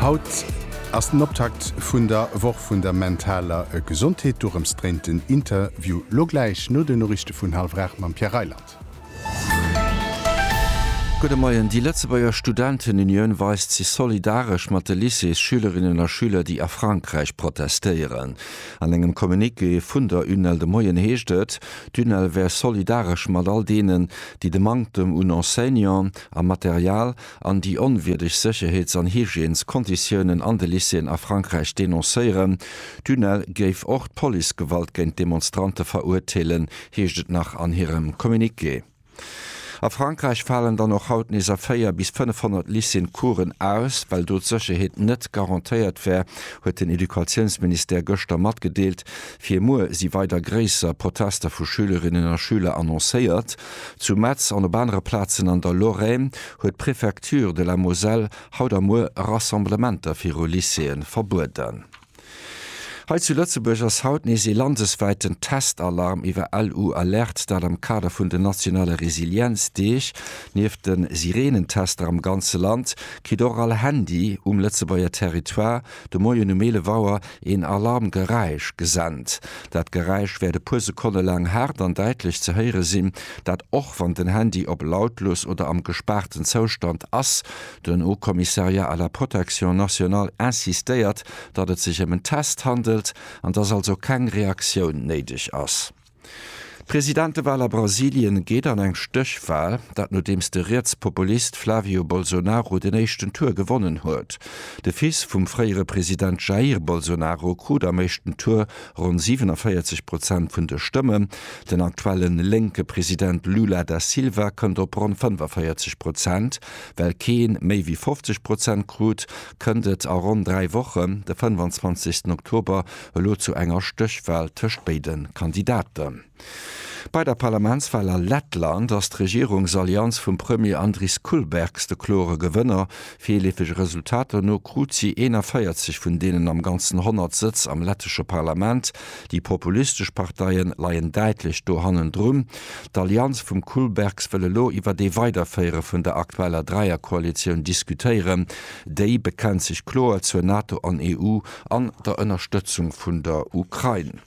Haut ass den Optakt vun der Woch vun der mentaler Gesondheet. Dorëms dréint den Interview lo gläich no den Noriichte vun hallwer 8 mam Pierre Reyland. Gudde Moien, Déi Lëtzebuerger Studentenunioun weist sech solidaresch mat de Lycéesschülerinnen a schüler, déi a Frankräich protestéieren. An engem Communiqué vun der UNEL de Moien heescht et, d'UNEL wär solidaresch mat all deenen, déi de Manktem un Enseignanten a Material an déi onwierdeg Sécherheets an Hygiènes-Konditiounen an de Lycéeën a Frankräich denoncéieren. D'UNEL géif och d'Policegewalt géint d'Demonstrante verurteelen, heescht et nach an hirem Communiqué. A Frankräich falen dann och haut nees a 4 bis 500 Lycéeën d'Coursen aus, well do d'Sécherheet net garantéiert wär, huet den Educatiounsministère gëschter matgedeelt. Fir muer si weider gréisser Protester vu Schülerinnen a Schüler annoncéiert. Zu Metz an op anere Plazen an der Lorraine huet d'Prefecture de la Moselle haut a muer Rassemblementer viru Lycéeë verbueden. Hei zu Lëtzebuerg ass haut nees ee landeswäiten Testalarm iwwer LU Alerte, dat am Kader vun den nationale Resilienzdeeg. Nieft de Sireenentester am ganze Land kritt och all Handy um Lëtzebuerger Territoire De Moien um 11 Auer een Alarmgeräisch gesent. Dat Geräisch wäert e puer Sekonne laang haart an däitlech ze héiere sinn, dat och wann den Handy op lautlos oder am gespaarten Zoustand ass. Den Haut Commissariat à la Protection Nationale insistéiert, datt et sech ëm en Test handelt an datt also keng Reaktioun néideg ass. D'Presidentewal a Brasilien geet an eng Stéchwal, dat nodeems de Rietspopulist Flavio Bolsonaro den éischten Tour gewonnen huet. De Fils vum fréiere President Jair Bolsonaro krut am éischten Tour ronn 47 Prozent vun de Stëmmen. Den aktuelle lénke President Lula da Silva kënnt op ronn 45 Prozent. Well kee méi wéi 50 Prozent krut, kënnt et a ronn dräi Wochen, de 25. Oktober, Elo zu enger Stéchwal tëscht béide Kandidaten. Bei der Parlamentswal a Lettland ass d'Regierungsallianz vum Premier Andris Kulbergs de klore Gewënner. Virleefege Resultater no krut si 41 vun deenen am Ganzen 100 Sëtz am lettesche Parlament. Déi populistesch Parteie leien däitlech do hannendrun. D'Allianz vum Kulbergs wëll elo iwwer ee Weiderféiere vun der aktueller Dräierkoalitioun diskutéieren. Déi bekennt sech kloer zur NATO an EU. an der Ënnerstëtzung vun der Ukrain.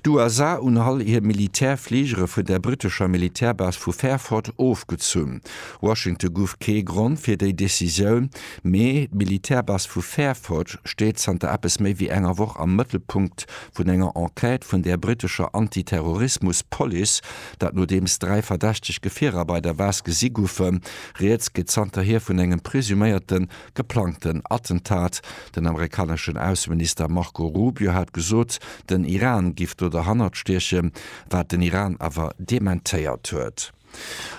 D'USA un all hir Militärfligere vun der britescher Militärbase vu Fairford ofgezunn. Washington guff kee Grond fir déi Decisioun, mee d'Militärbase vu Fairford steet zanter eppes méi wéi enger Woch am Mëttelpunkt vun enger Enquête vun der britescher Anti-Terrorismus-Police, dat nodeems dräi verdächteg Gefierer bei der Base gesi goufen. Rieds geet zanterhier vun engem presuméierte Geplangten Attentat. Den amerikaneschen Ausseminister Marco Rubio hat gesot, den Iran giff do derhannert stiechen, wat den Iran awer dementéiert huet.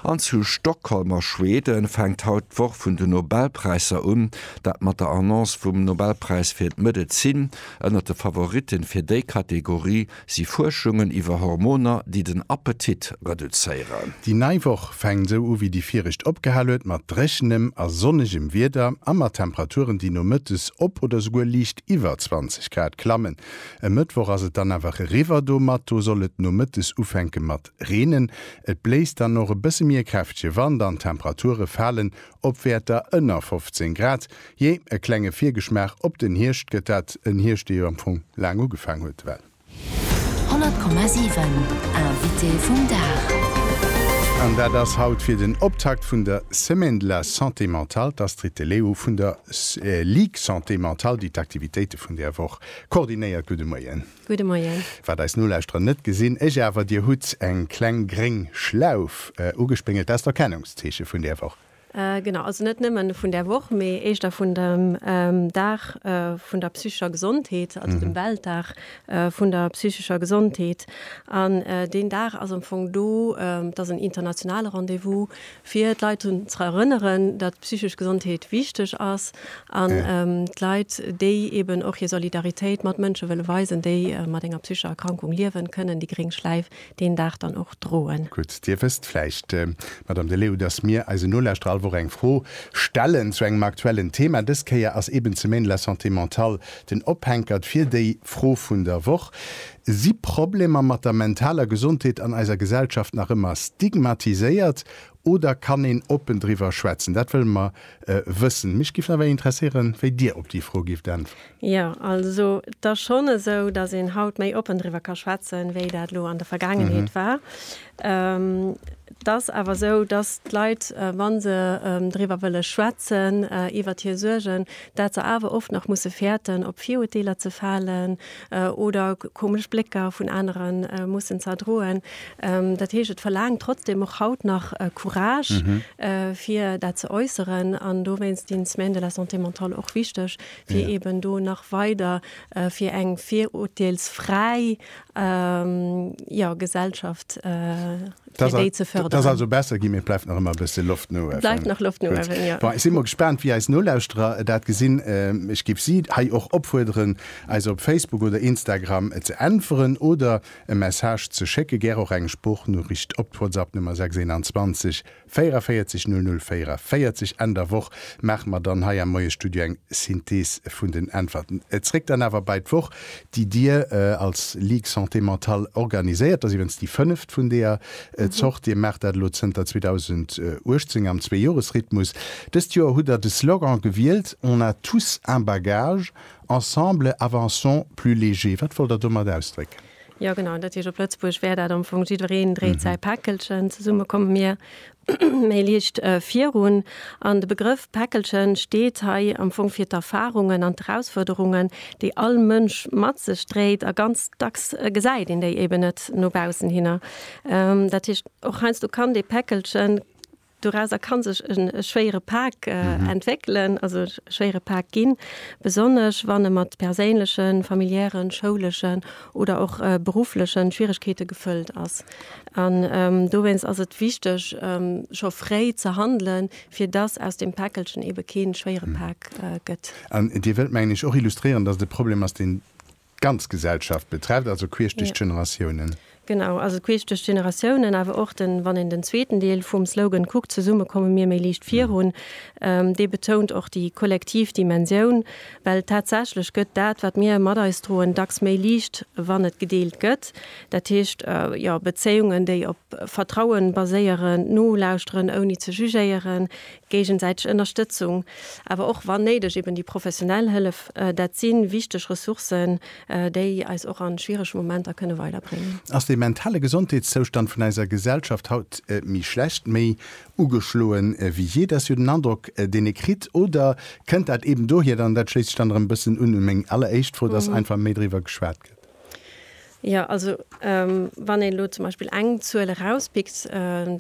An zu Stockholm a Schwede fänkt haut d'Woch vun den Nobelpräisser un. Dat mat der Annonce vum Nobelpräis fir d'Medezin. Ënnert de Favoritten fir déi Kategorie Si Fuerschungen iwwer Hormoner, déi den Appetit reduzéieren. Déi nei Woch fänkt esou u wéi déi viregt opgehal huet, mat dréchenem a sonnegem Wieder a mat Temperaturen, déi nomëttes op oder souguer liicht iwwer 20 Grad klammen. E Mëttwoch ass et dann awer eriwwer, domatto soll et nomëttes ufänke mat reenen. Et bléist dann och e bësse méi e kräftege Wand an d'Temperature falen Op Wäerter ënner 15 Grad, jee, e klenge Virgeschmaach op den Hierscht gëtt dat, en Hierscht, dee jo am Fong laang ugefaang huet, well. 100,7 Invité vum Dag. An dat ass haut fir den Optakt vun der Semaine de la Santé Mentale d'Astrid De Leo vun der Ligue Santé Mentale, déi d'Aktivitéite vun där Woch koordinéiert. Gudde Moien. Gudde Moien. Wat eis Nolauschterer net gesinn, ech awer, Dir hutt eng kleng gréng Schlauf ugespéngelt. Dat ass d'Erkennungszeeche vun där Woch. Genau, also net nëmmen vun där Woch, mee éischter vun dem Dag vun der psychescher Gesondheet, also dem Weltdag vun der psychescher Gesondheet. An deen Dag ass am Fong do, dat ass en internationale Rendez-vous, fir d'Leit drun ze erënneren, datt d'psychesch Gesondheet wichteg ass an d'Leit, déi eben och hir Solidaritéit mat Mënsche wëlle weisen, déi mat enger psychescher Erkrankung liewen, kënnen déi gréng Schläif deen Dag dann och droen. Gutt, Dir wësst vläicht, Madame Deleeuw, datt mir eisen Nolauschterer all Woch eng Fro stellen zu engem aktuellen Thema. Dës Kéier ass eben ze Maine la santé mentale den Ophänkert fir déi Fro vun der Woch. Si Problemer mat der mentaler Gesondheet an eiser Gesellschaft nach ëmmer stigmatiséiert oder kann een oppen driwwer schwätzen? Dat wëlle mer wëssen. Mech giff nawell interesséieren, wéi Dir op déi Fro gifft äntweren. Jo, also et ass schonn esou, dass een haut méi oppen driwwer ka schwätzen, wéi dat elo an der Vergaangenheet war. Et ass awer esou, dass d'Leit, wa se driwwer wëlle schwätzen, iwwert hir Suergen, dat se awer oft nach musse fäerten, op Viruerteeler ze falen, oder komesch Blécker vun anere mussen ze erdroen. Dat heescht, et verlaangt trotzdeem och haut nach Courage, fir dat ze äusseren. An dowéinst sinn d'Semaines de la santé mentale och wichteg, fir eeben do nach weider fir eng virurteelsfräi Gesellschaft fir déi ze förderen. Dat ass also besser ginn, mee et bleift nach ëmmer e bësse Loft no uewen. Et bleift nach Loft no uewen, jo. Bon, ech si mol gespaant, wéi eis Nolauschterer dat gesinn. Ech géif si hei och opfuerderen, eis op Facebook oder Instagram ze äntweren oder e Message ze schécken, gär och eng Sproochnoricht op d'Whatsappnummer 621 44 00 44. Enn der Woch maache mer dann hei am Moie-Studio eng Synthees vun den Äntwerten. Zréck dann awer bei d'Woch déi Dir als Ligue Santé Mentale organiséiert. Dat ass iwwens déi fënneft vun deeër Zort. Dir maacht dat elo zënter 2018 am Zweejoresrhythmus. Dëst Joer hutt Der de Slogan gewielt, On a tous un bagage, ensemble avançons plus légers. Wat wollt Der domat ausdrécken? Jo, genau. Dat heescht op Lëtzebuerg wär dat am Fong, Jiddwereen dréit säi Päckelchen, zesumme komme mir méi liicht virun. An de Begrëff Päckelchen steet hei am Fong fir d'Erfarungen an d'Erausfuerderungen, déi all Mënsch mat sech dréit, a ganz dacks gesäit een déi eben net no baussen hinner. Dat heescht, och heiansdo kann dee Päckelchen, dorauser ka sech e schwéiere Pak entwéckelen, also e schwéiere Pak ginn, besonnesch wann e mat perséinlechen, familiären, schouleschen oder och berufflechen Schwieregkeete gefëllt ass. An dowéinst ass et wichteg scho fréi ze handelen, fir dass aus deem Päckelchen eebe kee schwéiere Pak gëtt. An Dir wëllt, mengen ech, och illustréieren, dass et e Problem ass, deen d'ganz Gesellschaft betrefft, also queesch duerch d'Generatiounen. Genau, also queesch duerch d'Generatiounen, awer och den, wann een den zweeten Deel vum Slogan kuckt, Zesumme komme mir méi liicht virun, dee betount och déi kollektiv Dimensioun Well tatsächlech gëtt dat, wat mir mat eis droen, dacks méi liicht, wann et gedeelt gëtt. Dat heescht, jo, Bezéiungen, déi op Vertraue baséieren, d'Nolauschteren ouni ze jugéieren, géigesäiteg Ënnerstëtzung, awer och, wann néideg, eben déi professionell Hëllef, dat si wichteg Ressourcen, déi eis och a schwierege Momenter kënne weiderbréngen. Ass de mentale Gesondheetszoustand vun eiser Gesellschaft haut méi schlecht, méi Ugeschloen wéi jee, dat ass jo den Androck, deen ee kritt. Oder kënnt dat eeben dohier, an dat schléisst sech dann erëm e bëssen un un meng alleréischt Fro, dass einfach méi driwwer geschwat gëtt? Jo, also wann een elo zum Beispill eng Zuel erauspickt,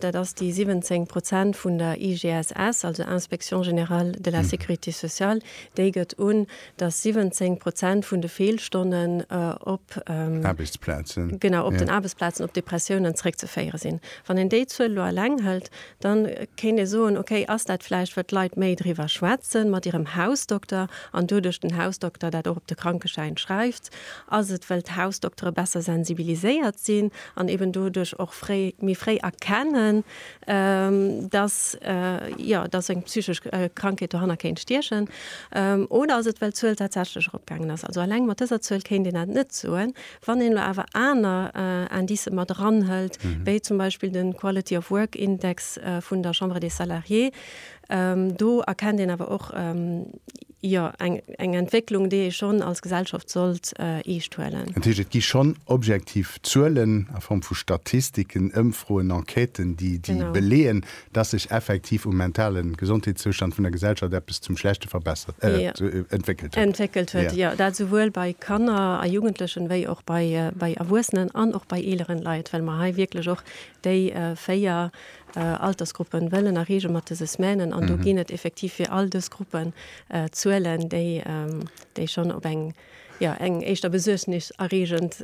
dat ass déi 17 Prozent vun der IGSS, also Inspection générale de la sécurité sociale, déi gëtt un, dass 17 Prozent vun de Feelstonnen op den Aarbechtsplazen op Depressiounen zeréckzeféiere sinn. Wann een déi Zuel elo eleng hëlt, da kéint ee soen, okay, ass dat vläicht, well d'Leit méi driwwer schwätze mat hirem Hausdokter an doduerch den Hausdokter dat och op de Krankeschäin schreift? Ass et, well d'Hausdoktere besser sensibiliséiert sinn an eeben doduerch och méi fréi erkennen, dass jo dass eng psychesch Krankheet dohanner kéint stiechen, oder ass et well d'Zuel tatsächlech eropgaangen ass? Also alleng mat dëser Zuel kéint een dat net soen. Wann een elo awer aner Indicë mat eranhëlt, wéi zum Beispill de Quality of Work Index vun der Chambre des Salariés, Do erkennt een awer och, jo, eng Entwécklung, déi ee schonn als Gesellschaft sollt eescht huelen. Dat heescht, et gi schonn objektiv Zuelen a Form vu Statistiken, Ëmfroen, Enquêten, déi beleeën, dass sech effektiv um mentale Gesondheetszoustand vun der Gesellschaft eppes zum Schlechte verbessert, entwéckelt huet. Entwéckelt huet, jo. Dat souwuel bei Kanner a Jugendlechen, wéi och bei Erwuessenen an och bei eeleren Leit, well mer hei wierklech och déi véier. Altersgruppen wëllen erreege mat dëse Semainen. An do ginn et effektiv fir all dës Gruppen Zuelen, déi schonn op eng éischter besuergniserreegend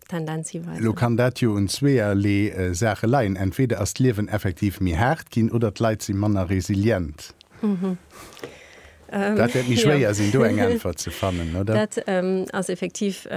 Tendenz hiweisen. Elo kann dat jo un zweeërlee Saache leien, Entweder ass d'Liewen effektiv méi haart ginn oder d'Leit si manner resilient. Dat wäert méi schwéier sinn, do eng Äntwert ze fannen, oder? Dat ass effektiv.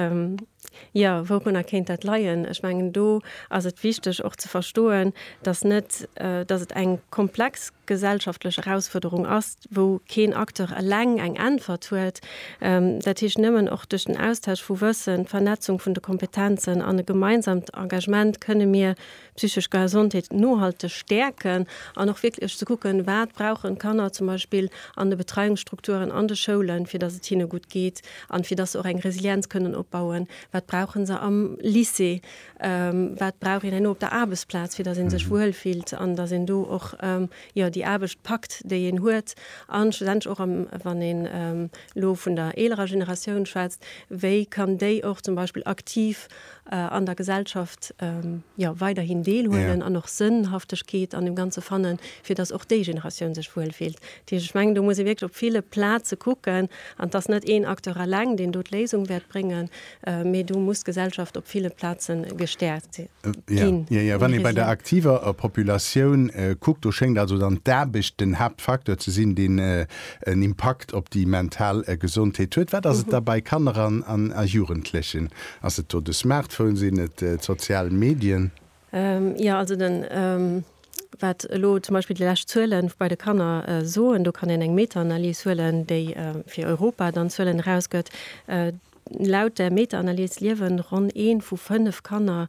Jo, wourunner kéint dat leien? Ech mengen, do ass et wichteg och ze verstoen, datt net, datt et eng komplex gesellschaftlech Erausfuerderung ass, wou keen Acteur eleng eng Äntwert huet. Dat heescht, nëmmen och duerch den Austausch vu Wëssen, d'Vernetzung vun de Kompetenzen an e gemeinsamt Engagement kënne mir Psychesch Gesondheet nohalteg stäerken an och wierklech ze kucken, wat brauchen d'Kanner zum Beispill an de Betreiungsstrukturen an de Schoulen, fir datt et hinne gutt geet an fir datt se och eng Resilienz kënnen opbauen. Wat brauche se am Lycée? Wat brauch een herno op der Aarbechtsplaz, fir datt ee sech wuel fillt an datt een do och, jo, déi Aarbecht packt, déi een huet? A schlussendlech och am, wann een elo vun der eelerer Generatioun schwätzt, wéi kann déi och zum Beispill aktiv an der Gesellschaft jo weiderhin deelhuelen an och Sënnhaftegkeet an dem Ganze fannen, fir datt och déi Generatioun sech wuel fillt. Dat heescht, ech mengen, do muss ee wierklech op ville Plaze kucken an et ass net een Acteur eleng, deen do d'Léisung wäert bréngen, mee do muss d'Gesellschaft op ville Plaze gestäerkt ginn. Jo, jo, wann ee bei der aktiver Populatioun kuckt, do schéngt also dann d'Aarbecht den Haaptfacteur ze sinn, deen en Impakt op déi mental Gesondheet huet. Wat ass et da bei Kanner a Jugendlechen? Ass et do de Smartphone, sinn et d'sozial Medien? Jo, also den, wat elo zum Beispill déi lescht Zuelen bei de Kanner soen, do kann een eng Meta-Analys huelen, déi fir Europa dann Zuelen erausgëtt. Laut där Meta-Analys liewe ronn ee vu fënnef Kanner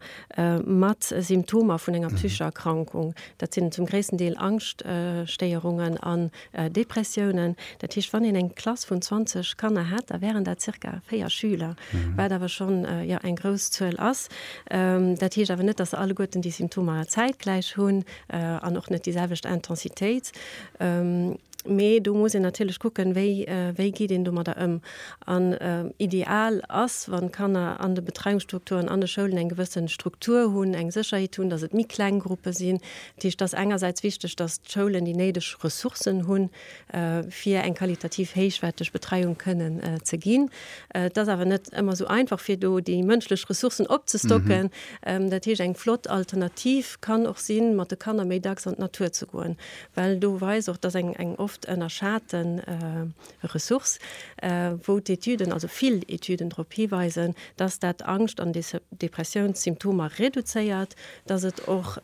mat Symptomer vun enger psychescher Erkrankung. Dat sinn zum gréissten Deel Angschtstéierungen an Depressiounen, dat heescht wann een eng Klass vun 20 Kanner hätt, da wären dat zirka 4 Schüler, wat awer schonn jo eng grouss Zuel ass. Dat heescht awer net, datt se alleguerten déi Symptomer zäitgläich hunn an och net déi selwecht Intensitéit. Mee do muss een natierlech kucken, wéi wéi geet een domadder ëm. An ideal ass, wann d'Kanner an de Betreiungsstrukturen, an de Schoulen eng gewësse Struktur hunn, eng Sécherheet hunn, datt et méi kleng Gruppe sinn, Dat heescht, et ass engersäits wichteg, datt d'Schoulen déi néideg Ressourcen hunn, fir eng qualitativ héichwäerteg Betreiung kënnen ze ginn. Et ass awer net ëmmer esou einfach, fir do déi mënschlech Ressourcen opzestocken. Dat heescht, eng flott Alternativ kann och sinn, mat de Kanner méi dacks an d'Natur ze goen, well do weist och, datt eng oft ënnerschate Ressource, wou d'Etüden, also vill Etüden drop hiweisen, dass dat Angscht an Depressiounssymptomer reduzéiert, dass et och,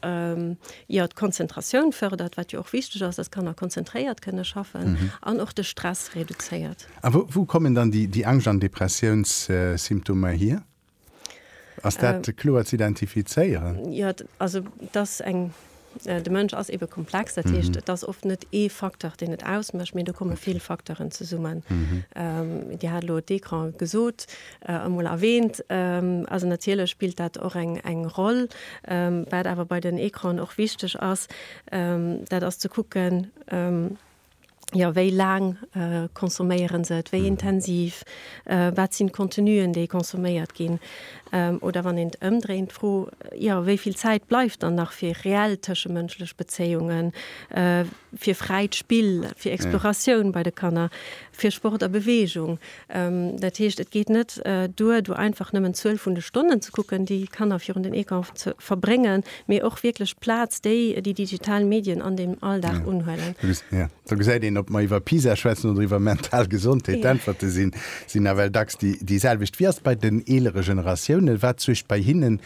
jo, d'Konzentratioun fërdert, wat jo och wichteg ass, dass d'Kanner konzentréiert kënne schaffen, an och de Stress reduzéiert. A wou kommen dann déi Angscht an Depressiounssymptomer hier? Ass dat kloer ze identifizéieren? Jo, also et ass eng, de Mënsch ass ebe komplex, dat heescht et ass oft net ee Facteur deen et ausmécht, mee do komme vill Facteuren zesummen. Dir hat elo d'Ecran gesot, emol erwähnt, also natierlech spillt dat och eng Roll. Wat awer bei den Ecranen och wichteg ass, dat ass ze kucken, jo wéi laang consomméieren se et, wéi intensiv, wat sinn d'Contenuen déi consomméiert ginn oder wann een et ëmdréint d'Fro, jo wéi vill Zäit bleift dann nach fir reell tëschemënschlech Bezéiungen, fir fräit Spill, fir Exploratioun bei de Kanner, fir Sport a Beweegung. Dat heescht, et geet net duer, do einfach nëmmen d'Zuel vun de Stonnen ze kucken, déi d'Kanner virun den Ecran verbréngen, mee och wierklech d'Plaz, déi déi digital Medien an dem Alldag unhuelen. Do gesäit een, ob mer iwwer PISA schwätzen oder iwwer mental Gesondheet, d'Äntwerte sinn nawell dacks déi selwecht. Wéi ass et bei den eelere Generatiounen? Wat suergt bei hinne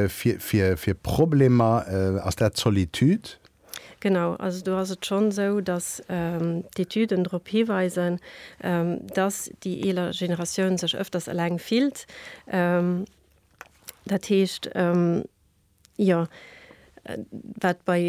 fir Problemer? Ass dat d'Solitude? Genau, also do ass et schonn esou, datt d'Etüden drop hiweisen, datt déi eeler Generatioun sech ëfters eleng fillt. Dat heescht, jo, wat bei,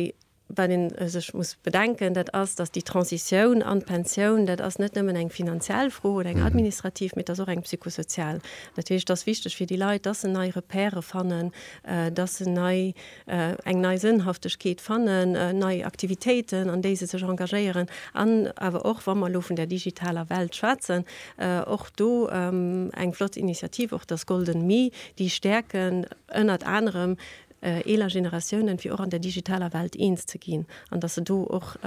wat een sech muss bedenken, dat ass, datt déi Transitioun an d'Pensioun, dat ass net nëmmen eng finanziell Fro oder eng administrativ, mee et ass och eng psychosozial. Dat heescht, et ass wichteg fir déi Leit, datt se nei Repèrë fannen, datt se nei, eng nei Sënnhaftegkeet fannen, nei Aktivitéiten, an déi se sech engagéieren, an awer och, wa mer elo vun der digitaler Welt schwätzen, och do eng flott Initiativ, och das Golden Me, déi stäerken ënnert anerem eeler Generatiounen, fir och an der digitaler Welt eens ze ginn an dass se do och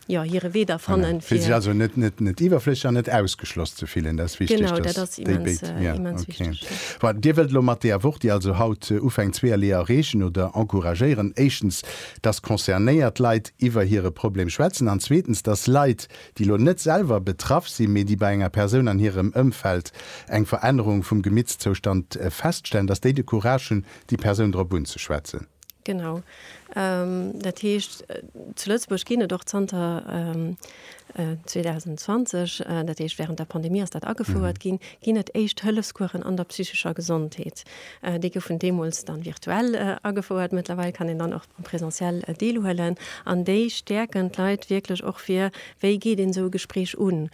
jo, hire Wee da fannen, fir. Fir sech also net, net, net iwwerflësseg an net ausgeschloss ze fillen. Dat ass wichteg, dass. Genau, dat ass immens, immens wichteg, jo. Voilà, Dir wëllt elo mat deeër Woch, déi also haut ufänkt, zweeërlee erreechen oder encouragéieren, éischtens, dass concernéiert Leit iwwer hire Problem schwätzen an zweetens, dass Leit, déi elo net selwer betraff sinn, mee déi bei enger Persoun an hirem Ëmfeld eng Verännerung vum Gemittszoustand feststellen, dass déi de Courage hunn, déi Persoun drop unzeschwätzen. Genau. Dat heescht, zu Lëtzebuerg ginn et och zanter 2020, dat heescht wärend der Pandemie ass dat agefouert ginn, ginn et Éischt-Hëllefscoursen an der psychescher Gesondheet. Déi goufen deemools dann virtuell agefouert. Mëttlerweil kann een dann och am Presentiel deelhuelen. An déi stäerken d'Leit wierklech och fir, wéi geet een esou e Gespréich un.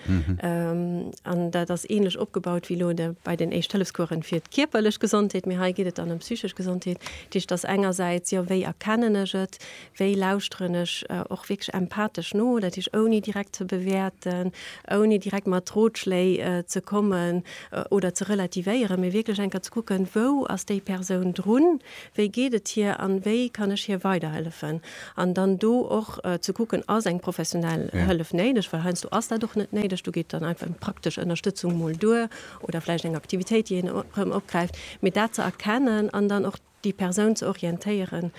An dat ass änlech opgebaut wéi elo bei den Éischt-Hëllefscoursen fir d'kierperlech Gesondheet, mee hei geet et dann ëm d'psychesch Gesondheet. D'Geschicht ass engersäits, jo, wéi erkennen ech et, wéi lauschteren ech och wierklech empathesch no, dat heescht ouni direkt ze bewäerten, ouni direkt mat Rotschléi ze kommen oder ze relativéieren, mee wierklech eng Kéier ze kucken, wou ass déi Persoun drun, wéi geet et hir an wéi kann ech hir weiderhëllefen. An dann do och ze kucken, ass eng professionell Hëllef néideg, well heiansdo ass dat och net néideg, do geet dann einfach praktesch Ënnerstëtzung mol duer. oder vläicht eng Aktivitéit, déi een erëm opgräift, mee dat ze erkennen an dann och déi Persoun ze orientéieren,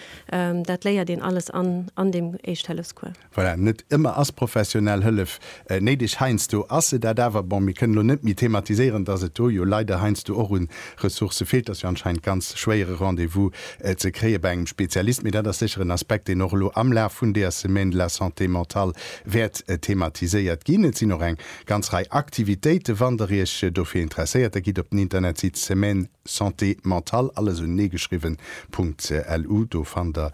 dat léiert een alles an deem Éischt-Hëllefscours. Voilà, net ëmmer ass professionell Hëllef néideg. Heiansdo ass se dat awer. Bon, mir kënnen elo net méi thematiséieren, dass et do jo leider heiansdo och u Ressourcë feelt. Et ass jo anscheinend ganz schwéier e Rendez-vous ze kréie bei engem Spezialist, mee dat ass sécher en Aspekt, deen och elo am Laf vun deer Semaine de la santé mentale wäert thematiséiert ginn. Et sinn och eng Ganz Rei Aktivitéite wann der iech dofir interesséiert, da gitt op den Internetsite Semaine Santé Mentale, alles unenee geschriwwen, .lu, do fannt der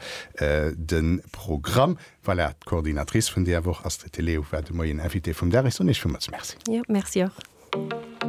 de Programm. Voilà, d'Coordinatrice vun deer Woch, Astrid de Leeuw, war de Moien Invitée vum Dag. Ech soen iech villmools Merci. Jo, Merci och.